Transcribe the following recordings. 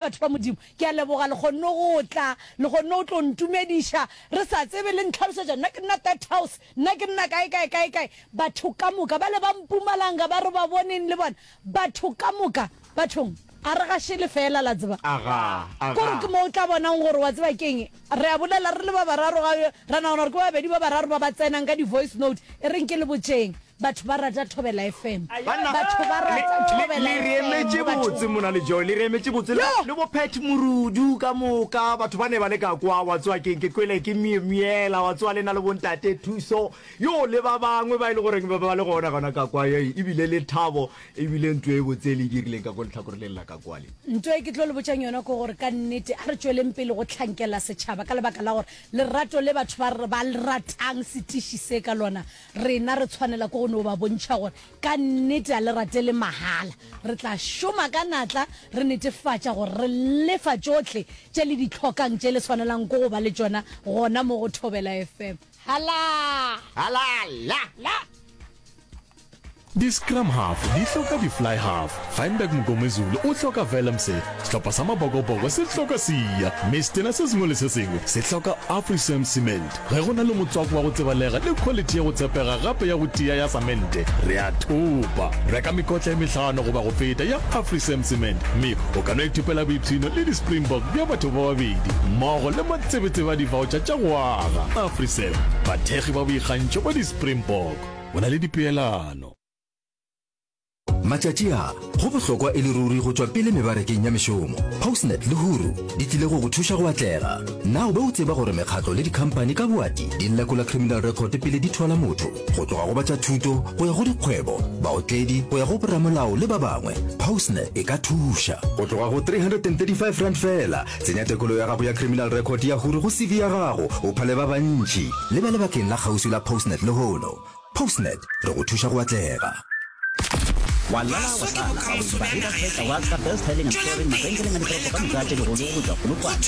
Batho ba Modimo, ke a leboga le kgonne go tla, le kgonne go tlo ntumediša re sa tsebe, le ntlhalošetša nna ke nna That House, nna ke nna kae, kae, kae, kae. Batho ka moka bale ba Mpumalanga ba re ba boneng le bona, batho ka moka, bathong, a re gašele feela, la tseba. Agaa, agaa. K'ore ke mo o tla bonang gore, wa tseba ke'ng, Re a bolela re le ba bararo ga yo, ra nagana gore ke ba babedi ba bararo ba ba tsenang ka di-voice note, e reng ke le botšeng. Batho ba rata Thobela FM. Banna, Batho ba le, rata le, Thobela le re FM emetše mo botse bathong. mona le Joy, le re emetše botse le, Yoh! le bo Pat Morudu ka moka. Batho ba ne ba le ka kwa, wa tsewa ke, ke kwele ke Mye, Myela, wa tsewa le na le bo Ntate Thuso, yoh, le ba bangwe ba e le goreng ba, ba le gona, gona ka kwa, yoh, ebile le Thabo E bile nto e botse e le dirileng ka ko lehlakoreleng la ka kwale. Nto e ke tlo le botšang yona ke gore ka nnete a re tšweleng pele go hlankela setšhaba ka lebaka la gore lerato le batho ba ba le ratang setiši se ka lona, rena re tshwanela ke go no ba bontšha gore ka nnete a le ratele mahala. Re tla šoma ka natla re netefatša gore re lefa tšohle tše le di hlokang tše le swanelang ke go ba le tšona gona mo go Thobela FM. Hala! Hala! La! La! Di-scrum half di hloka di-fly half. Feinberg Mngomezulu o hloka Vellemse, sehlopha sa Mabokoboko se hloka Siya, mme setena se sengwe le se sengwe se hloka Afrisan Cement. Ge go na le motswako wa go tsebalega le khwalithi ya go tshepega gape ya go tia ya samente, re a thopa. Reka mekotla e mehlano goba go feta ya Afrisan Cement mme o ka no ithopela boipshino le di-Springbok bja batho ba babedi mmogo le Tsebetseba divaotšha tša go aga, Afriserv, bathekgi ba boikgantšho ba di-Springbok, o na le dipeelano. Matšatši a, go bohlokwa e le ruri go tšwa pele mebarekeng ya mešomo. Postnet le Huru di tlile go go thuša go atlega. Na o be o tseba gore mekgatlo le dikhampani ka boati di lekola criminal record pele di thola motho? Go tloga go ba tša thuto go ya go dikgwebo, baotledi go ya go boramolao le ba bangwe, Postnet e ka thuša. Go tloga go R335 feela Tsenya tekolo ya gago ya Criminal Record ya Huru go CV ya gago, o phale ba bantši. Le ba lebakeng la kgauswi la Postnet lehono. Postnet, re go thuša go atlega. Wa lala, wa tlala, ga o ntšhe ba reka tsa Waka, Best Hailing and Touring, mabenkeleng a ditoropo ka moka tše digolo go tšwa Polokwane.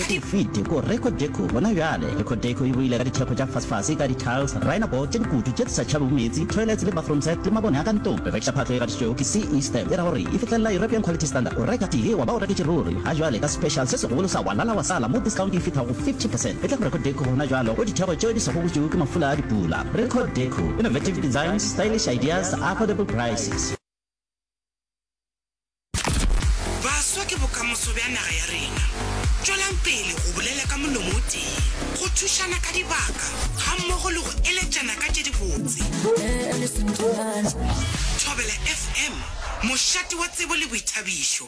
Ke fete ko Record Deco gona bjale. Record Deco e boile ka dithekgo tša fasfase ka di-tiles, rhino board tše dikutu tše di sa tšhabego meetse, toilets le bathroom set le mabone a ka ntlong. Re rekiša phatlo e gatišitšwego ke CE stamp e ra gore e fihlelela European Quality Standard. O reka tee wa ba o reketše ruri. Ga jwale ka special se segolo sa Walala wa Sala mo discount e fithago 50 percent e tla go Record Deco gona jwalo go ditheko tšeo di sa gogotšwego ke mafula a dipula. Record Deco, innovative designs, stylish ideas, affordable prices. Baswa ke bokamoso bja naga ya rena. Tšwelang pele go bolela ka molomo o tee, go thušana ka dibaka gammogo le go eletšana ka tše dibotse. Thobela FM, mošate wa tsebo le boithabišo.